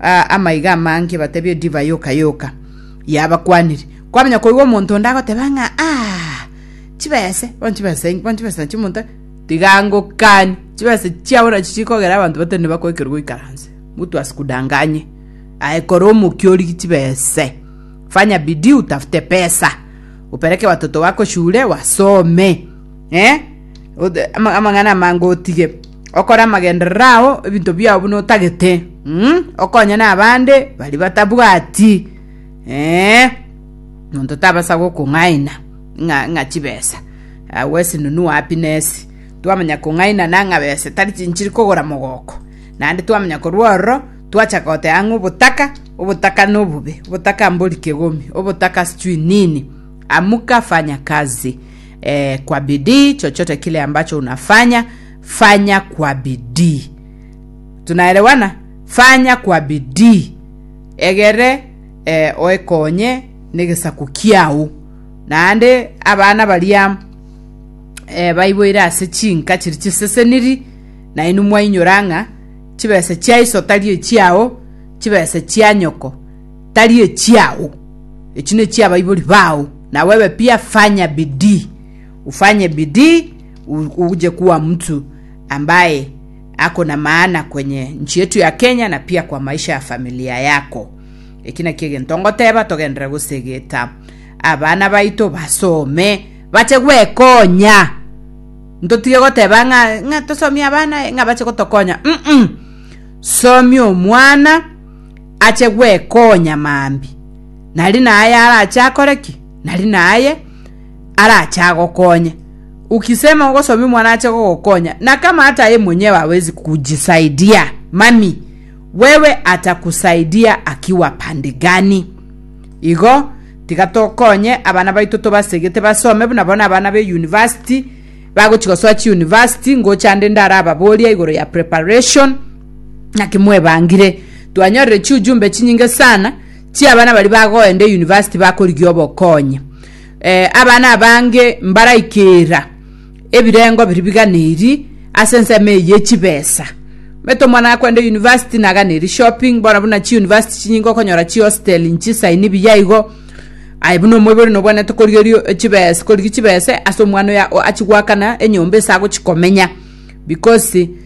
Aa amaiga amange batebie edivai yoka yoka yabakwanire. Kwamanya koigwa omonto onde agoteba ng'a aa chibese bono chibese enki bono chibese nachio omonto tiga ngokani chibese chiabo nachio chikogera abanto batari nibakoekerwa goikaranse mtu asikudanganye aye kora omokia origie chibese fanya bidii utafute pesa opereke watoto wako shule wasome eh? Ode- ama- amang'ana amange otige okore amagenderero ao ebinto biao buna otagete mm, okonye na abande bari batabwati ee monto tabasa gokong'aina ng'a ng'a chibesa agwo esinunu wapi nesi twamanya kong'aina na ng'a besa tari chinchiri kogora mogoko naende twamanya korwa ororo twachaka goteba ng'a obotaka obotaka nobobe obotaka mbori kegomi obotaka sijui nini amuka fanya kazi E, kwa bidii, chochote kile ambacho unafanya fanya kwa bidii. Tunaelewana? Fanya kwa bidii, egere e, oekonye negesaku kiao. Naende abana baria e, baiboire ase chinka chiri chiseseniri, nainwe mwainyora ng'a chibesa chiaiso tari echiao, chibesa chia nyoko tari echiao, echi nechia abaibori bao. Na wewe pia fanya bidii, ufanye bidii u- uje kuwa mtu ambaye ako na maana kwenye nchi yetu ya Kenya na pia kwa maisha ya familia yako. Eki nakio egento ngoteba togendere gosegeta abana baito basome bache gwekonya ntotige goteba ng'a ng'a tosomie abana eh, ng'a bache gotokonya mm somia omwana ache gwekonya maambi, nari naye arache akore ki? Nari naye arache agokonye. Ukisema ogosomia omwana ache gogokonya, na kama hata yeye mwenyewe hawezi kujisaidia, mami, wewe atakusaidia akiwa pande gani? Igo tiga tokonye abana baito tobasegete basome buna bono abana be university bagochi gosoa chi university ngocha nde ndarababoria igoro ya preparation Naki mwebangire? Twanyorire chiujumbe chinyinge sana chi'abana bari bagoenda eyunivasiti bakorigia obokonyi. Eh, abana abange mbaraikera ebirengo biri biganeri ase ensemo eye yechibesa. Omanyete omwana akwenda eyunivasiti naganeri shopping, bono buna chiyunivasiti chinyinge okonyora chihostel nchisaini buya igo, aye buna omoibori nobwenerete korigerio chibes korigia chibesa ase omwana oyo achigwakana enyomba ase agochi komenya because.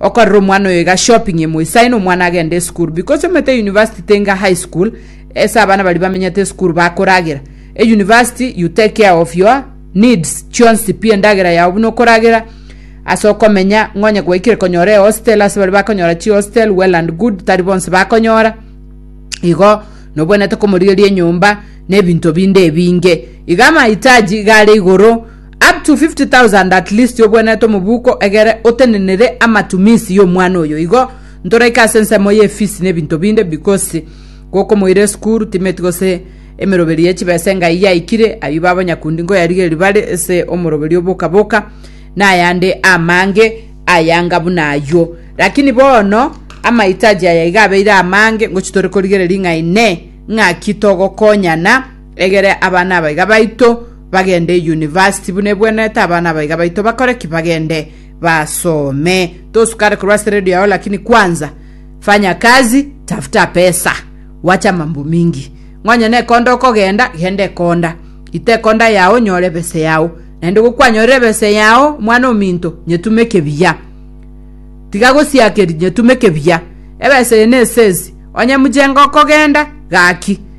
Okorera omwana oyo iga shopping ime oisaine omwana agende esukuru because omanyete university tenga high school ase abana baria bamenyete esukuru bakoragera e university you take care of your needs chionsi pi endagera yao buna okoragera ase okomenya ng'onye gwaikire konyora ehostel ase baria bakonyora chihostel well and good tari bonsi bakonyora igo nobwenerete komorigeria enyomba na ebinto binde ebinge iga amahitaji iga are igoro Up to 50,000 at least obwenerete omobuko egere otenenere amatumisi y'omwana oyo igo ntoraike ase ensemo ye fees nebinto binde because gokomoira esukuru timeti gose emeroberi ye chibesa engai yaikire ayio baba nyakundi nkoyarigeria bare ase omoroberi oboka boka nayande amange ayanga buna ayio lakini bono amaitaji aya iga abeire amange ngochi tore korigereria ng'a ine ng'aki togokonyana Egere abana abaiga baito bagende university buna ebwenerete abana abaiga baito bakore ki bagende basome tosukare korwa ase radio yao lakini kwanza fanya kazi tafuta pesa wacha mambo mingi ng'onye nekonda okogenda genda ekonda ita ekonda yao nyore ebese yao naende gokwanyorire ebese yao mwana ominto nyetume ekebiya tiga gosiakeri nyetume ekebiya ebese eye nesesi onye muchenga okogenda gaki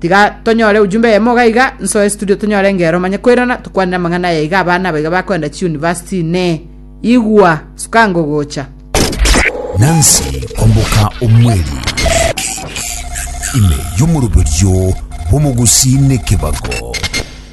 Tiga tonyore ujumbe eyemo iga iga, nsoe studio tonyore engero manye koirana tokwanere amang'ana aya iga abana abaiga bakoenda chiuniversity ne igwa sukango gocha. Nancy Komboka Omweli, ime y'omoroberio bw'omogusii n'ekebago.